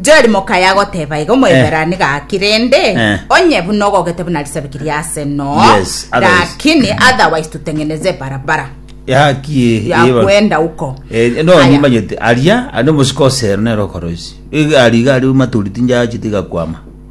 Jerimoka yagoteba iga Omoeberani gaki rende Eh. onye buna ogogete buna risabiki ria ase no Yes, otherwise. lakini otherwise tutengeneze barabara yakie ya kwenda uko Eh, no Aya. nimanyete aria ari omusika osero nero okoroisi iga ari iga ari maturiti njachi tigakwama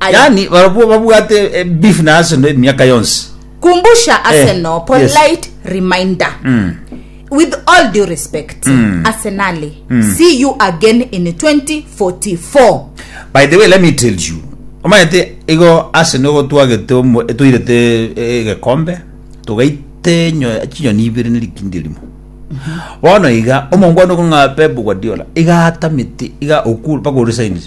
Aye. yaani barobwo babwate eh, beef na Arsenal emiaka yonsi Kumbusha Arsenal, yes. polite reminder. Mm. With all due respect, Arsenali, see you again in 2044. by the way let me tell you omanyete igo Arsenal igo twagete omo- toirete eh, egekombe togaite enyo- chinyoni ibere ne rikindi erimo bono iga omongwana okong'a Pep Guardiola iga atamete iga okul mpaka oresainire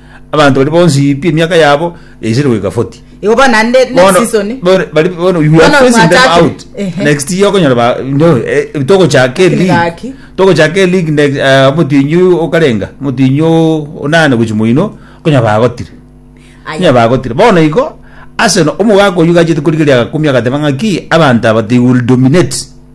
Abanto baria bonsi pi emiaka yabo yaisire goika 40. Igo bono naende next Bono season. bono- bari bono we Bono are phasing them mwachakire. out. Ehe. Next year okonyora ba no eh, togochaka Lakini league. gaki. Togochaka league next eh, omotienyi oyo okarenga, omotienyi o- onane gochi moino okonyora bagotire. Aya. Nya bagotire. Bono igo Arsenal omogaka oyio gachete korigeria agakumi agateba ng'aki abanto aba they will dominate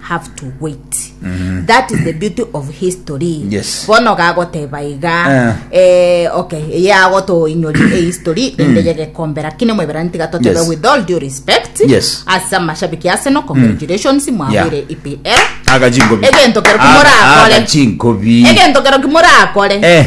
have to wait that is the beauty of history Mhm. Yes. bono gagoteba iga Ah. eh, okay eye agotoinyori e history ende yegekombe lakini mweberani tiga totebe Mm. Yes. with all due respect Yes. Mm. ase amashabiki ase no congratulations mwabwire E epl agachinkobi Egento kero kumora akore. agachinkobi egento kero kimorakore Eh.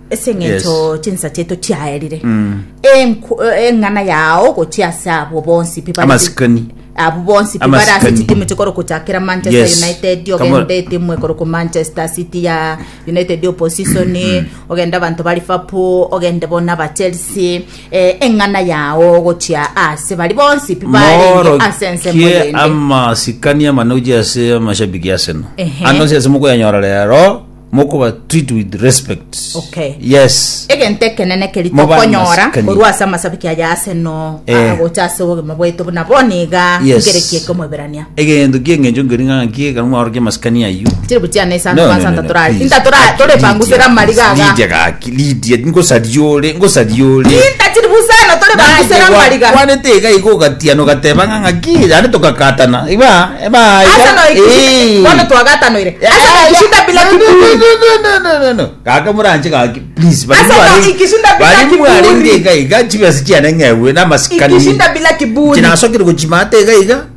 ase eng'encho Yes. chinsa chiaito chiaerire Enku- eh, eng'ana yao gochia ase abo bonsi pi bari- amasikani abo bonsi pi bare ase Amasikani. chitimu chikoro gochakera manchester Yes. united Kamo- ogenda etimu ekoro ku manchester city ya united opposition ogenda abanto ba liverpool ogende bona ba chelsea eh, eng'ana yao gochia ase bari bonsi pi barenge ase ensemo morokie yende amasikani amane oji ase amashabiki aseno Ehe. ano ase ase mokoyanyora rero mokoba treat with respect Okay. yes egento ekenene keri Moba tokonyora amasikani. korwa ase amasabiki aya ase no Eh. agocha ase obogima bwaito buna boniga Yes. ngereki eke omoiberania egento kieng'encho nkeri ng'a naki ekero mwaorokia masikani aywo tiri buchiana No, esano no, no, bansanta no, torari please. inta torari tore Lydia, pangusera amariga aga Lydia gaki. Lidia, ngosaria ore, ngosaria ore. Tintachiri busana tore banguse na mariga. Gwanete iga iga ogatiana ogateba ng'a ng'aki naende togakatana. Iba iba iga. Ase noe kisi. Bono twagatanoire. Ase noe kisi ndabila kiburi. Gaka moranche gaki please. Ase noe kisi ndabila kiburi. Bari mware iga iga chibesa chiane ng'egwe na masikani. Kisi ndabila kiburi. Chinasokire gochima ate iga iga.